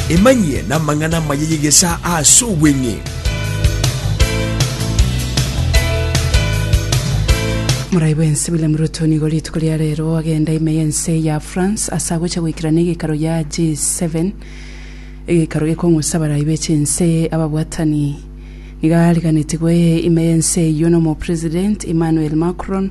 Emanyie namang'ana amaya y'egesaa aase obweng'e. Morai bwensi William Ruto nigo rituko ria rero agenda ime y'ense ya France ase agocha goikera n'egekaro ya G7 egekaro gekong'usa abarai be chinse ababwatani nigo ariganetigwe ime y'ense eyio n'omopresident Emmanuel Macron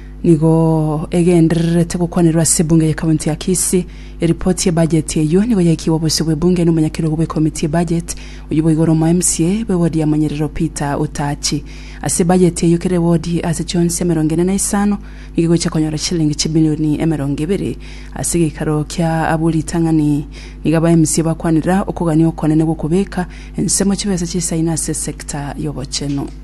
Nigo egendererete gokwanerwa ase ebunge ye county ya Kisii. Eripoti ye budget eyio nigo yaikigwe obosio bwe bunge na omonyakerogo bwe committee ye budget, oyio boigo ore omo mca bwe ward ya Monyerero Peter Utachi. Ase budget eyio kera eward ase chionsi emerongo ene na isano nigo egochia konyora chilingi chibilioni emerongo ebere. Ase egeikaro kia abwo ritang'ani nigo aba mca bakwanera okogania okonene gwokobeka ensemo chibesa chisaine ase esector yobochenu.